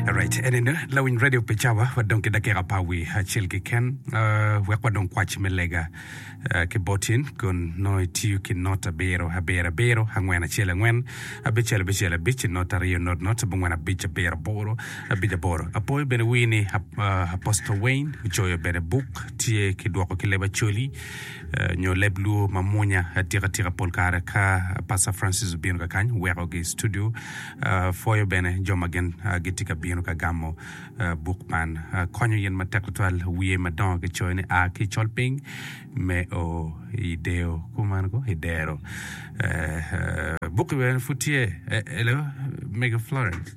Alright, enene lawiny radio pe cawa wadong ki dakika pa wi acel keken uh, wek wadong kwac me lega uh, ki botin kun nongo itiyo ki not abiro abiro abiro angwen acel angwen abicel abicel abic not aryo not not abongwen abic abiro aboro abic aboro apoyo bene wini uh, Apostle Wayne ocoyo bene buk tye ki dwoko ki leba coli nyo leb luo ma munya atika tika pol kare ka Pastor Francis obino ka kany weko gi studio pwoyo bene jo ma gin gitye ka bino ka gamo buk man konyo in matek tutwal wiye madongo ki coyo ni a ki i col piny me o i deyo kuman ko i dero buk bene pud tye elo mega Florence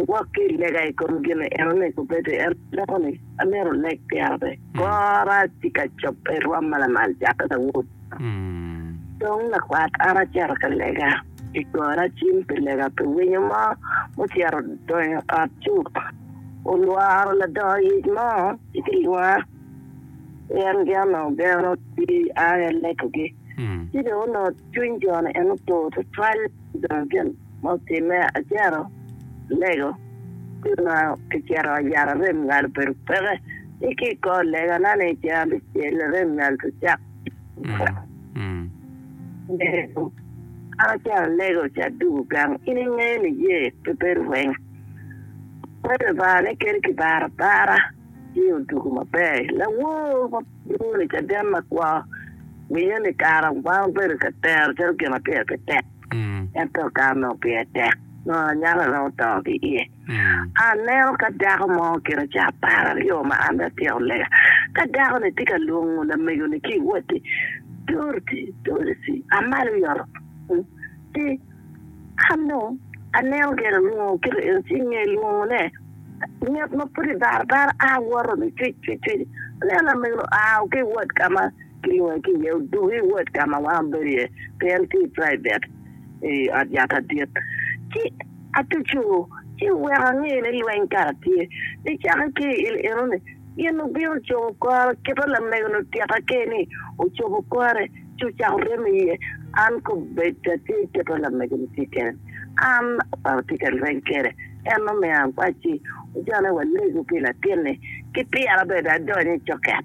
Iwok ki i lega i kom gin enoni, Kubedi en dako ni, Amito lek pira pe. Kora tye ka cobbe rwom ma lamal cakke lawot. Dong lakwat an acito ka lega i goro acim pi lega pi winyo mo mucito donyo ot cuk. Olworo ladongo yec mo ci ki lwonga pien gin onongo geno pi aa i aleko gi. Ci dong onongo cwiny jo ni en otur tutwal dong gin. Ma otimme, acito alego pi ma kicito yat arem nyal obedo peke ni ki i kor legana ni cen abicel arem nyal pe cak nego. An acito alego ci adugo gang. In ingeyo ni ye pe bedo weng pe Lubanga ni kadi ki baro abara ci odugo maber. Lawor ma lwongo ni Caden Makwor winyo ni kara wango bedo ka tero calo gin ma pire pe tek. ento ka onongo pire tek nongo anyaka dong oto ki iye. Aneno ka dako mo kite ca apar aryo ma an bene atyeko lega, ka dako-ni tye ka lwongo lamego-ni ki i watti, Dorothy, Dorothy, a malo i ot ci an dong aneno gire alwongo kite eno ci i nge lwongone, ngat ma pud ibara abara a woto ni cwic cwic cwic, aneno lamego-ni oa ki i wod ka ma Kilwongi ki iye, Odug i wod ka ma wan wabedo iye, pi en tye i praivit i ot yat adit. Ci atuco, ci oweko angeyo ni lweny kara tye. Pi cakke ki i il enoni, gin obino cobo kore kite lamego-ni otyeka ki ni ocobo kore, ci ocako remo iye. An kobedda tye kite lamego-ni tye kene, an pe atye ka lweny kwede. En omiyo an kwai ci ojone walegu pi latin-ni ki pyera bene adony i coket.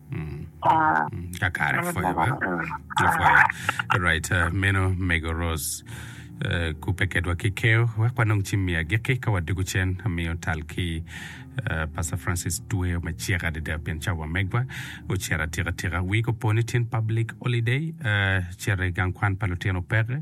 kakare apwoyo ba apwoyo right uh, meno mego Rose uh, kupe kedwa ki keyo wek wanong cim mi agikki ka wadoko cen amiyo tal ki uh, Pastor Francis Tweyo me cek adada pien ca wamegwa ocito atika tika wik opo ni tyen public holiday uh, cere gang kwan pa lutino peke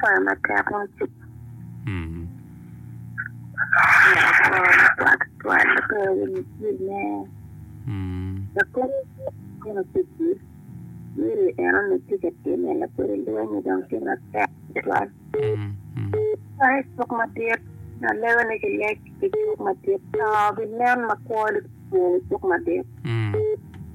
Pwoyo matek ma ci Mm. twatwal pe winyo cwinye. Mm. Lapwony kono cwinyi myero en onongo tye ka timme lapwony lwonyi dong tye matek tutwal. Mm. Mm. Ai cuk madit na lebe ni ki lec ki cuk madit to ginen makwoli cuk madit. Mm.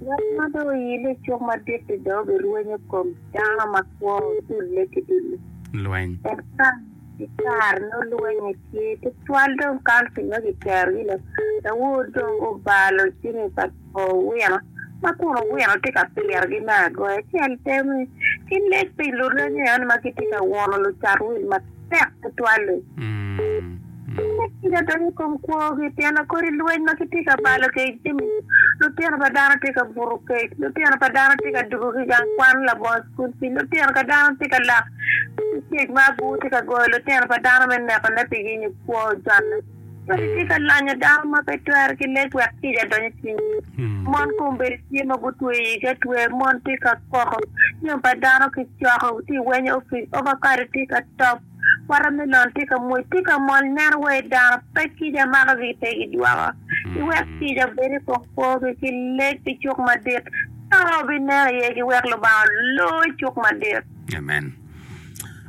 Ngat ma dong oyine i cuk madit-ti dong obirwenyo kom Dano makwo odulle ki dul lweny. En kany ki kare nongo lweny aye tye tutwal dong kan pi nongo kiterogi lok. Daud dong obalo jami pa owino ma kun owino tye ka pirogi me agoya acel pe ki leb pi lureme eno ma gitye ka wuno lucat wil matek. tek tutwal-li. Kit ma tic adwogi i kom kwogi pien kodi lweny ma kitye ka balo ki i jami, lutino pa dano tye ka buto kec, lutino pa dano tye ka dugo ki i gang kwan labongo cukul pii, lutino pa dano tye ka lak ki kec ma abur tye ka goyo lutino pa dano me nekone pi yenyo kwo jwanne. Wek itye ka lonyo dano ma pe twere ki leb wek kica odony i cwinyi. Mon kombeddi tye ma gutweyo igi atweya, mon tye ka koko, jami pa dano kicoko, tye ka wenyo opic, ovakado tye ka top, watermelon tye ka mwec, tye ka mol. Nen wai dano, pe kica makogi pe gidwoko. Iwek kica obed i kom kwogi ki lebbi cuk madit, ka ma wabinen aye ki wek Lubanga olo i cuk madit. Amen.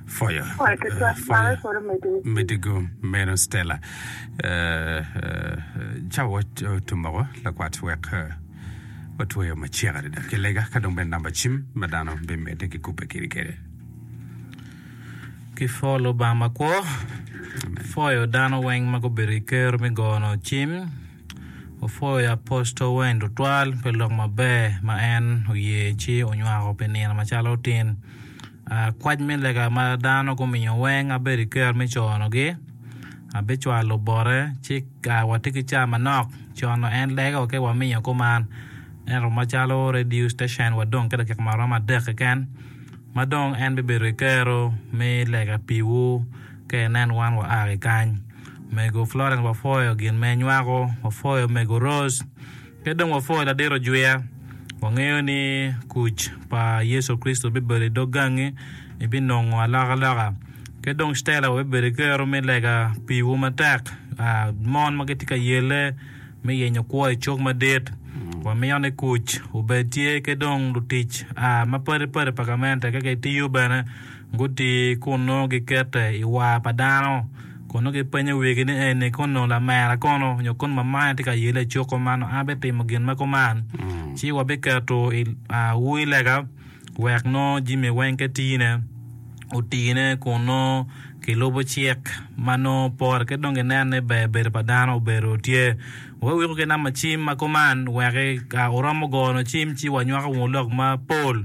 Foyo. Foyo tutwal eh, foyo. Mare koro medi. Medi go meno Stella. Eh, eh, Cawa wat- otumoko lakwat wek eh, watweyo macek adada ki lega ka dong bene namba cim ma dano bimedde ki kubbe kiri kede. Ki pho Lubanga makwo, phoyo dano weng ma gubedo i ker me gono cim, ophoyo Apostol Wayne tutwal pi lok maber ma en oye ci onywako pi nino macalo tin. Kwac me lega ma dano gumiyo weng abedo i ker me conogi abicwalo bote ci watye ki cawa manok cono en lego ki wamiyo kuman ento macalo radio station wa dong ki dakika ma romo adek keken ma dong en bibedo ki kero me lega piwu ka inen wan wa ki kany mego Florence wafoyo gin ma inywako wafoyo mego Rose. Pe dong wapwo i ladiro jwia. Wangeyo ni kuc pa Yecu Kricito bibedo i dog gangi, ibinongo alokaloka. Ki dong Stella wa bibedo ki kero me lega piwu matek. Mon ma gitye ka yelle me yenyo kwo i cuk madit, wamito ni kuc obed tye ki dong lutic mapadi padi pa gamente ka gitiyo bene Guti kun nongo gikete i war pa dano, kun nongo gipenyo wigi ni, 'Eni kun nongo lamera kono, nyo kun mamane tye ka yelle i cuko ma nongo an abitimo gin ma kuman? Ci wabiketo i ur lega wek nongo jami weng ka tine otine kun nongo kilubo cik ma nongo pore ki dong ginen ni ber bedo pa dano obedo tye. Wa weko ki namba cim ma kuman wek ka wuromo goyo nongo cim ci wanywako wunu lok mapol.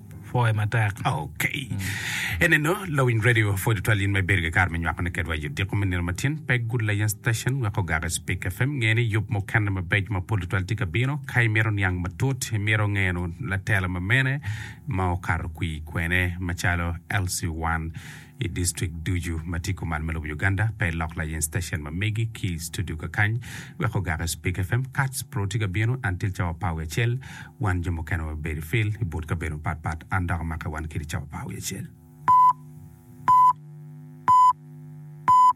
pwoye matek. Ok. Eneno, lawiny radio pwod tutwal in ma ibedo ki kare me nywakone kedwa i odiko me nino matyen, pe gud layen station wek ogaki Speke FM. Nge ni yub mukene mabeco mapol tutwal tye ka bino. Ka imito niang matut, imito ngeno latela ma mene ma okato kwi kwene macalo LC1. I district ducu ma tye kuman me lobo Uganda, pe ilok layen station ma megi ki i studio kakany wek ogak i Speak FM. Kats bro tye ka bino, an til cawa par wiye acel. Wan jo mukene wabedo i field i but kabedo mapat pat. An dok amakke wan kidi cawa par wiye acel.